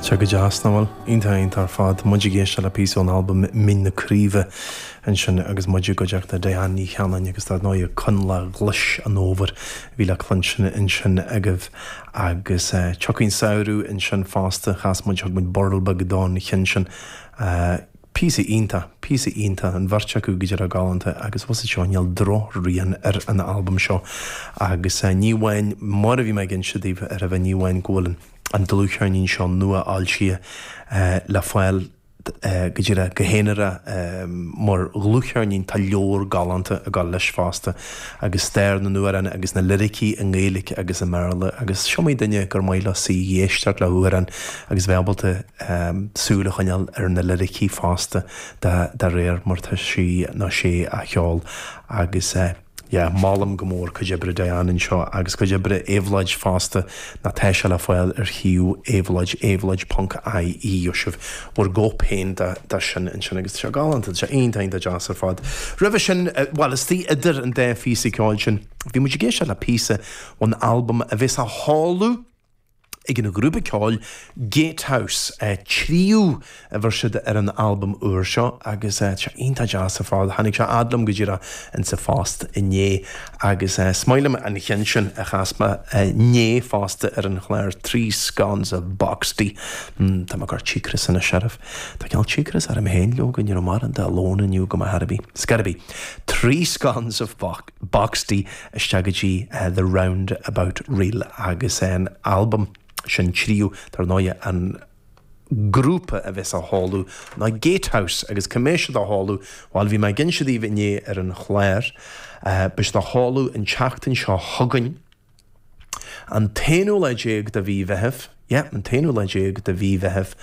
Tá sé go deas, nach bhfuil? Iontach, iontach ar fad. Muid ag éisteacht le píosa ón albam Mín na Craoibhe ansin agus muid i gcuideachta Diane Ní Chanainn agus dar ndóigh Coinleach Ghlas an Fhómhair a bhí le cluinstin ansin agaibh. Agus Tiocfaidh an Samhradh ansin fosta, chas muid, thug muid burl beag don cheann sin. Píosa iontach, píosa iontach, an bheirt acu go díreach galánta agus fhios agat seo, níl drochrian ar an albam seo agus ní amháin, mar a bhí mé ag inse daoibh aroimhe, ní amháin go bhfuil an dlúthcheirnín seo nua-fhoilsithe le fáil go díreach, go haonara, mar dhlúthcheirnín, tá leabhar galánta ag gabháil leis fosta agus stair na n-amhrán agus na liricí i nGaeilge agus i mBéarla agus is iomaí duine gur maith leo suí ag éisteacht le hamhráin agus bheith ábalta súil a choinneáil ar na liricí fosta de réir mar tá sí nó sé á cheol agus, yeah, molaim go mór cuid oibre Diane anseo agus cuid oibre Éabhlóid fosta ná tá sé le fáil ar shuíomh Éabhlóid, éabhlóid ponc IE, gheobhaidh sibh bhur gcóip féin de sin ansin agus tá sé galánta, tá sé iontach deas ar fad. Roimhe sin, bhuel, istigh idir an dá phíosa ceoil sin, bhí muid ag éisteacht le píosa ón albam a bheas á sheoladh, Ag an ghrúpa ceoil Gatehouse, Tríú a bheir siad ar an albam úr seo agus tá sé iontach deas ar fad. Tháinig sé a fhad liom go díreach insa phost inné agus is maith liom an cheann sin a chas mé inné fosta ar an chlár, Three Scones of Boxty. Tá mé ag cur cíocras anois oraibh. Tá cineál cíocras orm féin leoga, ní raibh mórán de lón inniu agam ar bith. It's got to be three scones of box. Boxty isteach go dtí The Roundabout Reel agus an albam sin Tríú. Dar ndóigh, an grúpa a bheas á sheoladh ná Gatehouse agus cá mbeidh siad á sheoladh? Bhuel, bhí mé ag inse daoibh inné ar an chlár, beidh siad á sheoladh an tseachtain seo chugainn. An t-aonú lá déag de mhí Mheithimh, yeah, an t-aonú lá déag de mhí Mheithimh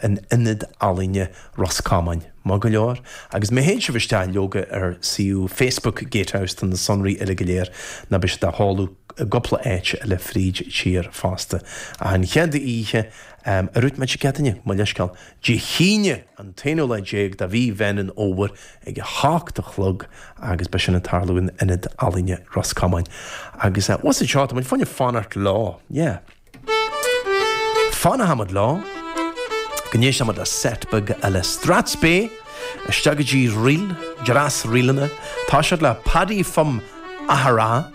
in Ionad Ealaíne Ros Comáin. Maith go leor. Agus má théann sibh isteach leoga ar suíomh Facebook Gatehouse do na sonraí uile go léir ná beidh siad á sheoladh i gcúpla áit eile fríd tír fosta. Ach an chéad oíche mar a dúirt mé, Dé Céadaoin, mo leithscéal, Dé hAoine, an t-aonú lá déag de mhí Mheán an Fhómhair ag a hocht a chlog agus beidh sin ag tarlú in Ionad Ealaíne Ros Comáin. Agus eh, fhios agat seo, tá muid chun fanacht leo, yeah. Fanfaidh muid leo go n-éistfidh muid le set beag eile Strathspey, isteach go dtí ríl, dreas ríleanna, toiseacht le Paddy from Aghera,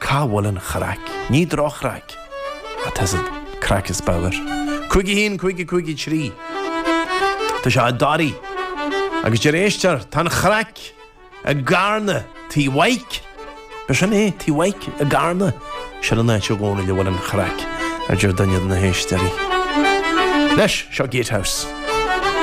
Cá bhfuil an chraic? Ní drochraic atá sa chraic is bagair. Cúig a haon, cúig a cúig a trí. Tá sé i dToraigh. Agus deir éisteoir, tá an chraic i gCarna, Tí Mhaidhc. Ba sin é, Tí Mhaidhc i gCarna. Sin an áit i gcónaí a bhfuil an chraic, a deir duine de na héisteoirí. Anois, seo Gatehouse.